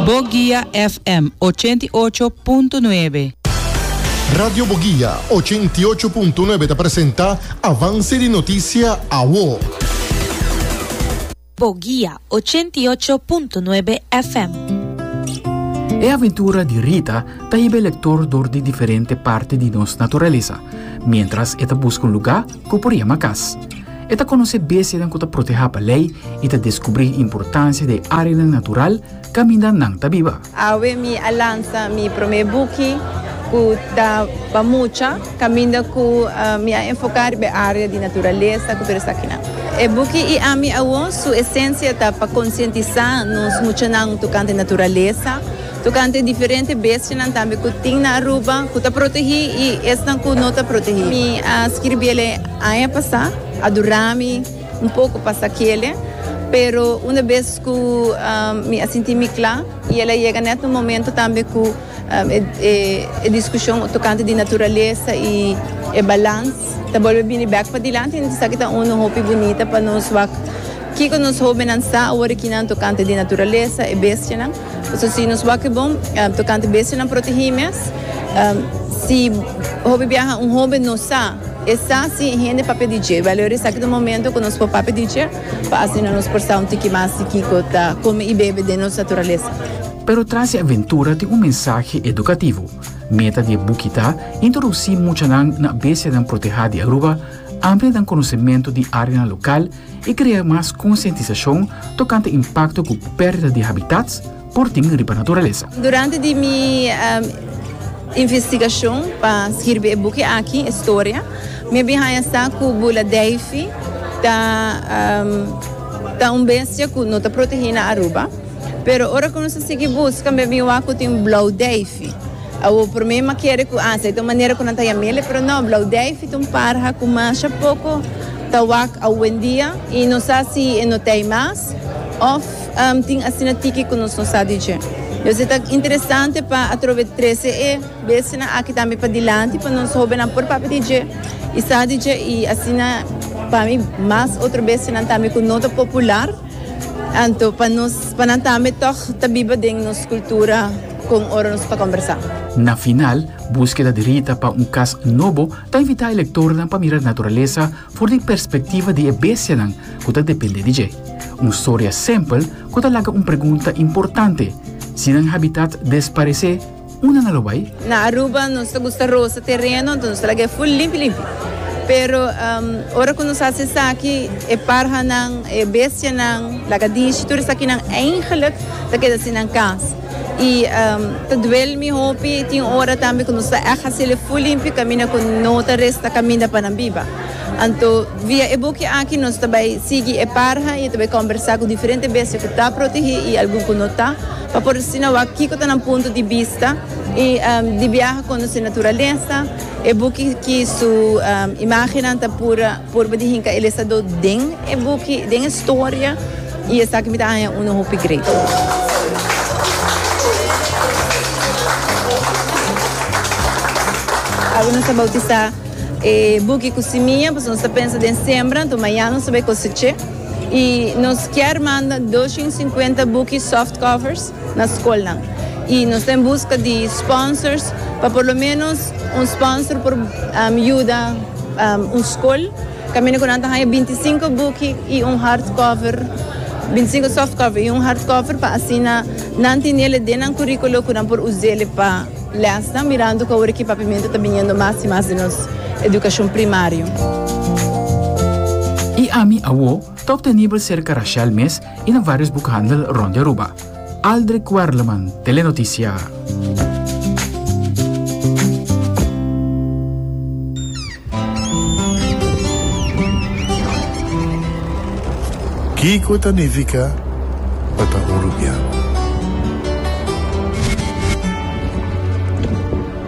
Bogia FM ochenta i ocho punto nuebe. Radio Bogia ochenta i ocho punto nuebe ta presenta Avance di Noticia Awo. Bogia ochenta i ocho punto nuebe FM. E aventura di Rita ta hiba e lektor dor di diferente parti di nos naturalesa, miéntras e ta buska un lugá ku e por yama kas. E ta konosé bestianan ku ta protehá pa lei i ta deskubrí importansia di e áreanan natural kaminda nan ta biba. Awe mi a lansa mi promé buki ku ta pa mucha kaminda ku mi a enfoká riba e área di naturalesa ku tur esakinan. E buki I Ami Awor su esensia ta pa konsientisá nos muchanan tokante naturalesa. Tokante diferente bestianan tambe ku tin na Aruba ku ta protegí i esnan ku no ta protegí. Mi a skirbi el e aña pasá, a durá mi un poko pa sa kele, pero unda bes ku mi a sinti mi kla i el a yega nèt un momentu tambe ku e diskushon tokante di naturalesa i e balans ta bolbe bini bèk padilanti. Esaki ta unu hopi bunita pa nos wak kiko nos hóbennan sa awor aki nan tokante di naturalesa, e bestianan. So si nos wak e bom tokante bestianan protehi mes, si hopi biaha un hoben no sa, e sa si e hende papia di dje. Wèl, ahora esaki ta un momento ku nos por papia di dje, pa asina nos por sa un tiki mas di kiko ta kome i bebe den nos naturalesa. Pero tras e aventura tin un mensahe edukativo. Meta di e buki ta introdusi muchanan na bestianan protehá di Aruba, amplianan konosementu di áreanan lokal, i krea mas konsientisashon tokante impakto ku pèrdida di habitats por tin riba naturalesa. Durante di mi investigashon pa skirbi e buki aki, e storia, mi a bin haña sa ku bula dèifi ta ta un bestia ku no ta protegí na Aruba. Pero ora ku nos a sigui buska mi a bin wak ku tin blou dèifi. Awor por mi m'a kere cu Asa, e ta un manera cu nan ta yam'ele, pero no, Blauwdijf ta un parha cu masha poco ta wak awendia y no sa si e no t'ey mas of tin asina tiki cu nos no sa di dje. Pues e ta interesante pa atrobe trece e besenan aki tambe pa dilanti pa nos hobennan por papia di dje y sa di dje y asina pa mi mas otro besenan tambe cu no ta popular, anto pa nos, pa nan tambe tog ta biba den nos cultura. con ora nos ta combersa. Na final, Búskeda di Rita pa un Kas Nobo ta invitá e lektornan pa mira naturalesa for di perspektiva di e bestianan ku ta dependé di dje. Un storia sempel ku ta laga un pregunta importante, Si nan habitat desparesé, unda nan lo bai? Na Aruba nos ta gusta rosa tereno, anto nos ta laga e ful limpi limpi. Pero ora ku nos hasi esaki, e parhanan, e bestianan, lagadishi, tur esakinan, eingelik ta keda sin nan kas. Y ta duel mi hopi, tin ora tambe cu nos ta echt hacel'e full limpio caminda cu no ta resta caminda pa nan biba. Anto via e buki aki nos ta bay sigui e parha y e ta bay combersa cu diferente bestia cu ta protege y algun cu no ta, pa por asina wak kico ta nan punto di bista y di biaha conoce naturalesa. E buki ki su imagennan ta pura. Purba di hinka el estado den e buki, den e storia, y esaki mi ta haña unu hopi great. Awe nos ta bautisa e buki cu simia, pasobra nos ta pensa den sembra, anto mañana nos ta bay coseche, y nos kier manda dos shin cincuenta buki softcovers na skolnan i nos ta en buska di sponsors pa por lo menos un sponsor por yuda un skol kaminda ku nan ta haña binti sinku buki i un hard cover binti sinku soft cover i un hard cover pa asina nan tenele den nan kurikulo ku nan por usele pa lèsnan mirando ku awor e kipapimento ta biniendo mas i mas den nos edukashon primario. I ami awor Top ta nibel serka Rashel mes i na varios bukhandel rond di Aruba. Aldrick Werleman, Telenoticia. Kiko ta nifica pa ta urubiano?